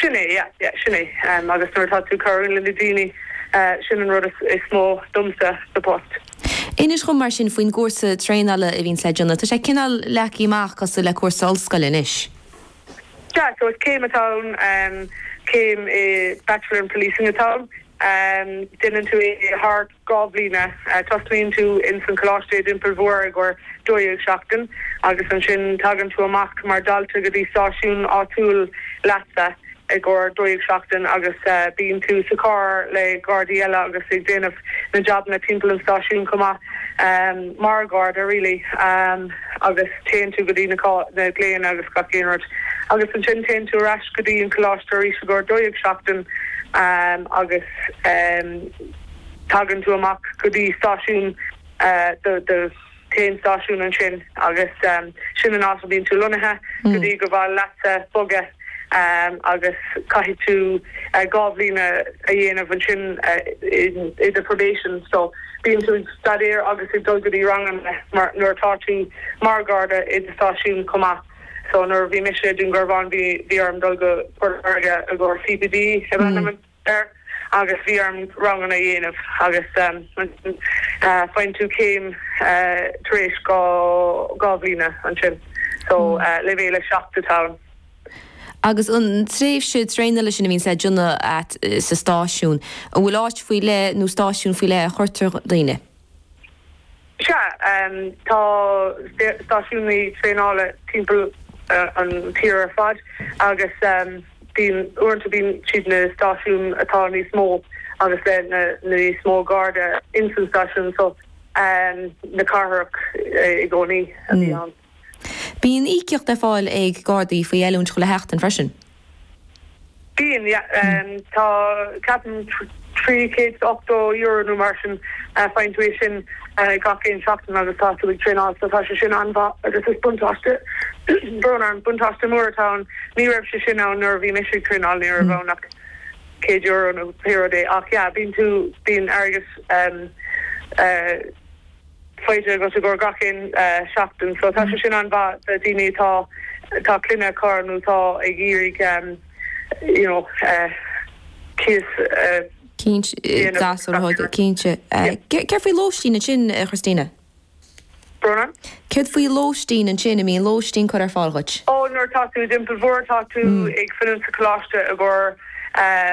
Sin é, yeah, yeah, sin é. Agus nuair atá tú ag cabhrú le na daoine, sin an rud is mó domsa sa post. Inis dhom mar sin faoin gcúrsa traenála a bhíonns le déanamh. Tá sé cineál leagtha amach cosúil le cúrsa ollscoile anois. Sea, so is céim atá ann, céim i Bachelor in Policing atá ann. Déanann tú é thar dhá bhliana. Tosnaíonn tú ins an Choláiste i dTeampall Mhór i gcomhair 12 seachtain agus ansin tagann tú amach mar dhalta go dtí stáisiún áitiúil leatsa i gcomhair 12 seachtain agus bíonn tú sa charr le gardaí eile agus ag déanamh na jabanna timpeall an stáisiún chomh maith mar gharda really agus téann tú go dtí na glaonna agus gach aon rud agus ansin téann tú ar ais go dtí an Choláiste arís i gcomhair 12 seachtain agus. tagann tú amach go dtí stáisiún do do chéad stáisiún ansin agus sin an áit a bhíonn tú lonnaithe go dtí gur féidir leatsa bogadh agus caithfidh tú dhá bhliana a dhéanamh ansin i do probation so bíonn tú ag staidéar agus ag dul go dtí ranganna mar nuair atá tú mar gharda i do stáisiún chomh maith so nuair a bhí mise i Dún Garbhán bhí orm dul go Port Láirge i gcomhair CPD a dhéanamh ansin. air agus bhí orm ranganna a dhéanamh agus ansin faigheann tú céim tar éis dhá bhliana ansin. So leibhéal a seacht atá ann. Agus an tréimhse traenála sin a bhíonns le déanamh agat sa stáisiún, an bhfuil áit faoi leith nó stáisiún faoi leith a chuirtear daoine? Sea, tá stáisiúin traenála timpeall an tír ar fad agus bíonn, uaireanta bíonn siad na stáisiúin atá níos mó agus le níos mó Garda insan stáisiúin so na cathrach i gcónaí a bhíonn. Bíonn íocaíocht ar fáil ag Gardaí faoi oiliúint chuile sheachtain freisin. Bíonn, yeah. Tá, ceapaim, €380 nó mar sin, faigheann tú é sin gach aon seachtain agus tá tú ag traenáil so tá sé sin an-mhaith agus is buntáiste, brón orm, buntáiste mór atá ann. Ní raibh sé sin ann nuair a bhí mise ag traenáil, ní raibh ann ach €100 nó pé rud é ach, yeah, bíonn tú, bíonn airgead, eh, faighte agat i gcomhair gach aon seachtain. So tá sé sin an-mhaith do daoine atá atá clann acu nó atá ag iarraidh you know é seo a dhéanamh. Cinnte. Céard faoi lóistín ansin a Christina? Brón orm? Céard faoi lóistín ansin, an mbíonn lóistín curtha ar fáil dhuit? Oh nuair atá tú i dTeampall Mhór tá tú ag fanacht sa choláiste i gcomhair.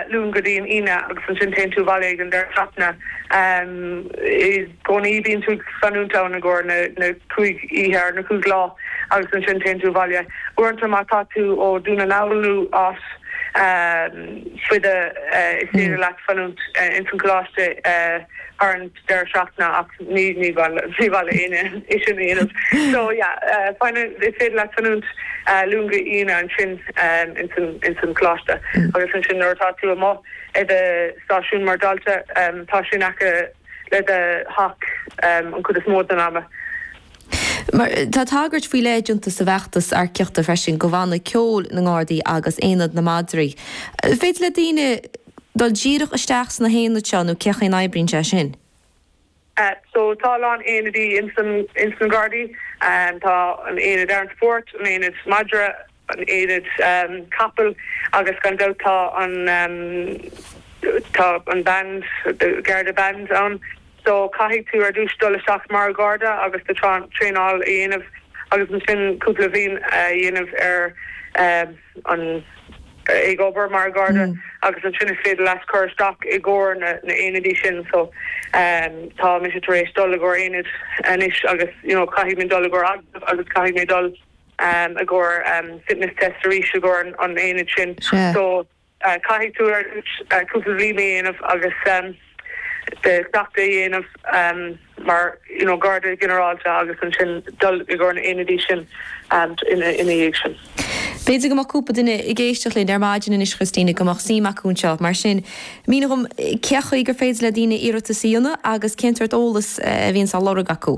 Luan go dtí an Aoine agus ansin téann tú abhaile ag an deireadh seachtaine. I gcónaí bíonn tú ag fanúint ann i gcomhair na cúig oíche or na cúig lá agus ansin téann tú abhaile. Uaireanta má tá tú ó Dún na nGall nó áit níos faide is féidir leat fanúint ins an choláiste thar an deireadh seachtaine ach ní bhaineann aoinne é sin a dhéanamh so yeah baineann, is féidir leat fanúint Luan go hAoine ansin ins an Choláiste agus ansin nuair atá tú amuigh i do stáisiún mar dalta tá sé in aice le do theach an chuid is mó den am. Mar tá tagairt faoi leith déanta sa bhfeachtas earcaíochta freisin do bhanna ceoil na nGardaí agus Aonad na Madraí, an féidir le daoine, dul díreach isteach sna haonaid seo nó cén chaoi a n-oibríonn sé sin. So tá a lán aonaidí ins na Gardaí. Tá an aonad armed support, an aonad madra, an aonad capall agus gan dabht tá an tá an band Garda band ann. So caithfidh tú ar dtús dul isteach mar Gharda agus do traenáil a dhéanamh agus ansin cúpla bhliain a dhéanamh ar an ag obair mar Gharda agus ansin is féidir leat cur isteach i gcomhair na n-aonaidí sin so tá mise tar éis dul i gcomhair aonad anois agus you know caithfidh mé dul i gcomhair agallaimh agus caithfidh mé dul i gcomhair fitness test arís i gcomhair an aonad sin so caithfidh tú ar dtús cúpla bhliain a dhéanamh agus. do sheachtain a dhéanamh mar Gharda Ginearálta agus ansin dul i gcomhair na n-aonadaí sin ina dhiaidh sin. B'fhéidir go mbeadh cúpla duine ag éisteacht linn ar maidin anois, Christina, go mbeadh suim acu anseo. Mar sin, mínigh dhom cén chaoi gur féidir le daoine iarratas a dhéanamh agus cén sórt eolas a bhíonns á lorg acu?